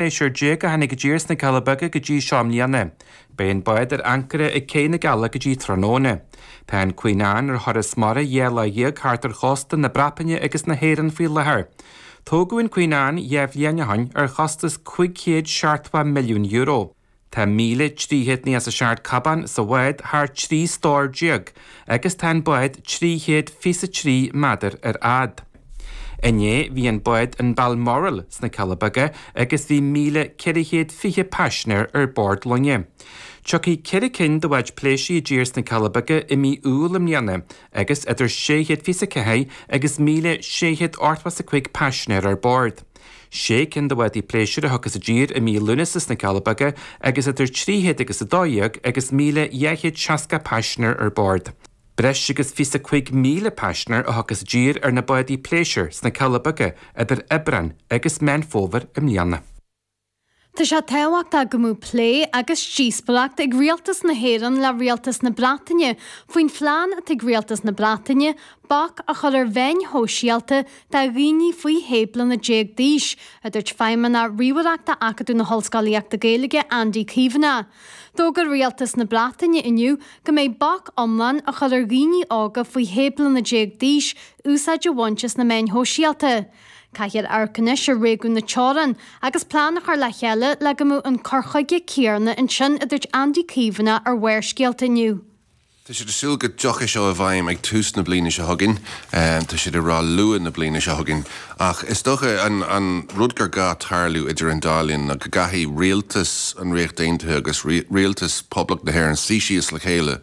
pléisiúir déag a tháinig i dtír sna Cealla Beaga go dtí seo i mbliana. Beidh an bád ar ancaire ag céidh na gCealla go dtí tráthnóna. Tá an Queen Anne ar thuras mara dhá lá dhéag thart ar chósta na Breataine agus na hÉireann faoi láthair. Tógadh an Queen Anne dhá bhliain ó shin ar chostas €570 milliún. Tá míle trí chéad nócha is a seacht cábán sa bhád thar trí stór déag agus tá an bád trí chéad fiche is a trí méadar ar fhad. Inné bhí an bád an Balmoral sna Cealla Beaga agus bhí míle ceithre chéad fiche paisinéir ar bord loinge. Tiocfaidh ceithre cinn de bháid pléisiúir i dtír sna Cealla Beaga i mí Iúil i mbliana agus idir sé chéad fiche is a ceathair agus míle sé chéad ochtó is a cúig paisinéir ar bord. sé cinn de bhádaí pléisiúir a thiocfas i dtír i mí Lúnasa sna Cealla Beaga agus idir 300 agus 12 agus 1260 paisinéir ar bord. Breis agus 25,000 paisinéir a thiocfas i dtír ar na bádaí pléisiúir sna Cealla Beaga idir Aibreán agus Meán Fómhair i mbliana. Tá sé tábhachtach go mbeadh plé agus díospóireacht ag Rialtas na hÉireann le Rialtas na Breataine faoin phlean atá ag Rialtas na Breataine bac a chur ar mheáin shóisialta do dhaoine faoi shé bliana déag d'aois, a dúirt Feidhmeannach Ríomhaireachta Acadamh na hOllscolaíochta Gaeilge Andy Caomhánach. D'fhógair Rialtas na Breataine inniu go mbeidh bac iomlán á chur ar dhaoine óga faoi shé bliana déag d'aois úsáid a bhaint as na meáin shóisialta. Caithfear amharc anois ar réigiún na teorann agus plean a chur le chéile le go mbeadh an cur chuige céarna ansin, a dúirt Andy Caomhánach ar Bharrscéalta inniu. Tá siad ag súil go dtiocfaidh seo i bhfeidhm ag tús na bliana seo chugainn, tá siad ag rá luath na bliana seo chugainn. Ach is dócha an rud gur gá tarlú idir an dá linn ná go gcaithfidh rialtas an Ríocht Aontaithe agus rialtas Poblacht na hÉireann suí síos le chéile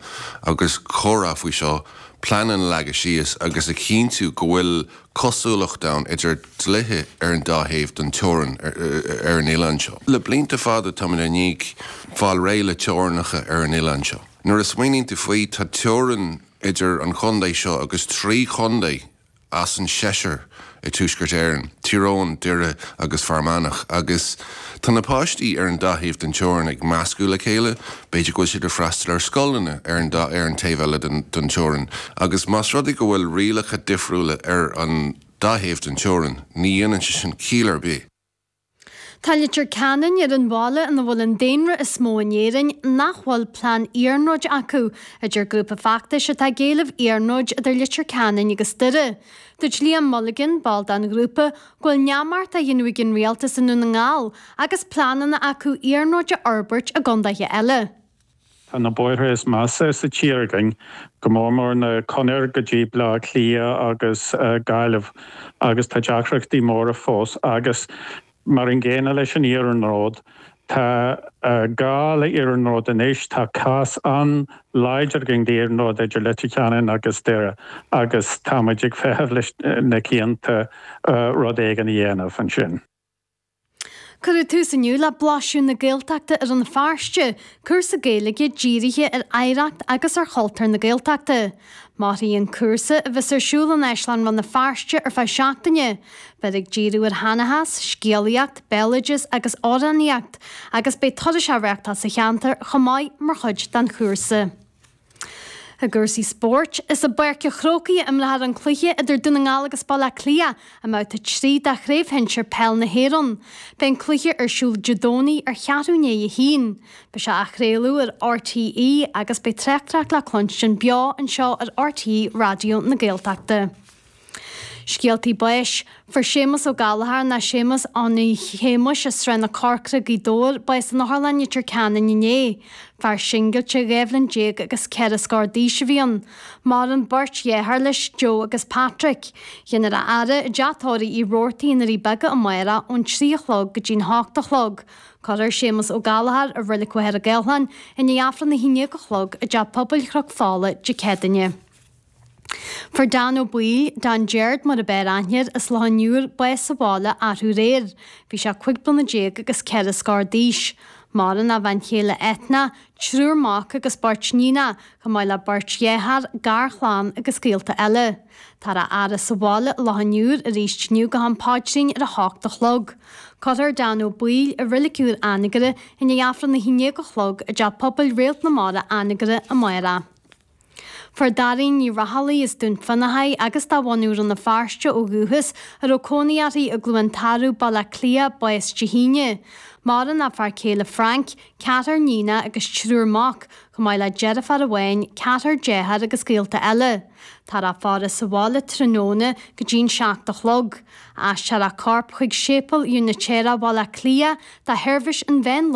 agus comhrá faoi seo, pleananna a leagadh síos agus a chinntiú go bhfuil cosúlacht ann idir dlíthe ar an dá thaobh den teorainn ar an oileán seo. Le blianta fada táimid i ndiaidh fáil réidh le teorainneacha ar an oileán seo. Nuair a smaoiníonn tú faoi, tá teorainn idir an chontae seo agus trí chontae as an seisear i dTuaisceart Éireann, Tír Eoghain, Doire agus Fear Manach, agus, Tá na páistí ar an dá thaobh den teorainn ag meascadh le chéile, b'fhéidir go bhfuil siad ag freastal ar scoileanna ar an dá ar an taobh eile den teorainn, agus más rud é go bhfuil rialacha difriúla ar an dá thaobh den teorainn, ní dhéanann sé sin ciall ar bith. Tá Leitir Ceanainn ar an bhaile ina bhfuil an daonra is mó in Éirinn nach bhfuil plean iarnróid acu, a deir grúpa feachtais atá ag éileamh iarnróid idir Leitir Ceanainn agus Doire. Dúirt Liam Mulligan, ball den ghrúpa, go bhfuil neamart á dhéanamh ag an rialtas i nDún na nGall agus pleananna acu iarnróid a fhorbairt i gcontaetha eile. Tá na bóithre is measa sa tír againn, go mór mór na Conair go dtí Bleá Cliath agus Gaillimh, agus tá deacrachtaí móra fós agus, mar an gcéanna leis an iarnród, Tá gá le iarnród anois. Tá cás an-láidir againn d'iarnród idir Leitir Ceanainn agus Doire agus tá muid ag feitheamh leis na cianta rud éigin a dhéanamh ansin. Cuireadh tús inniu le Blaiseadh na Gaeltachta i Rann na Feirste, cúrsa Gaeilge dírithe ar oidhreacht agus ar chultúr na Gaeltachta. Mairfidh an cúrsa, a bheas ar siúl in Áislann Rann na Feirste ar feadh seachtaine. Beifear ag díriú ar sheanchas, scéalaíocht, béaloideas agus amhránaíocht agus beidh turais á reachtáil sa cheantar chomh maith mar chuid den chúrsa. I gcúrsaí spóirt, is i bPáirc a' Chrócaigh a imreofar an cluiche idir Dún na nGall agus Baile Átha Cliath I mbabhta 3 de Chraobh Shinsir Peil na hÉireann, beidh an cluiche ar siúl Dé Domhnaigh ar cheathrú i ndiaidh a haon. Beidh sé á chraoladh ar RTÉ agus beidh tráchtaireacht le cluinstin beo anseo ar RTÉ Raidió na Gaeltachta. Scéaltaí Báis, Fuair Séamus Ó Gallchóir ná Séamus Annie Shéamuis as Srath na Corcra, Gaoth Dobhair, bás in Otharlann Leitir Ceanainn inné. Fear singilte, dhá bhliain déag agus ceithre scór d'aois a bhí ann. Maireann beirt dheartháir leis, Joe agus Patrick. Déanfar a fhaire i dTeach Tórraimh Uí Rabhartaigh i nDoirí Beaga amárach ón trí a chlog go dtí an hocht a chlog. Cuirfear Séamus Ó Gallchóir i Reilig Mhachaire Gathlán i ndiaidh Aifreann a haon déag a chlog i dTeach Pobail Chnoc Fola Dé Céadaoine. Fuair Dan Ó Baoill, Dan Jeard mar ab fhearr aithne air as Loch an Iúir, bás sa bhaile arú aréir. Bhí sé cúig bliana déag agus ceithre scór d'aois. Maireann a bhean chéile Ethna, triúr mac agus beirt níonacha, chomh maith le beirt dheartháir, garchlann agus gaolta eile. Táthar á fhaire sa bhaile i Loch an Iúir aríst inniu go ham paidrín ar a h-ocht a chlog. Cuirfear Dan Ó Baoill i Reilig Úr Anagaire i ndiaidh Aifreann a haon déag a chlog i dTeach Pobail Réalt na Mara Anagaire amárach Fuair Doireann Ní Raghallaigh as Dún Fionnachaidh agus de bhunadh Rann na Feirste ó dhúchas, a raibh cónaí uirthi i gCluain Tarbh, Baile Átha Cliath, bás Dé hAoine. Maireann a fear céile Frank, ceathrar níonacha agus triúr mac, chomh maith le deirfiúr amháin, ceathrar dearthár agus gaolta eile. Táthar á faire sa bhaile tráthnóna go dtí an seacht a chlog. Aistreofar a corp chuig Séipéal Úinitéireach Bhaile Átha Cliath do sheirbhís an mheán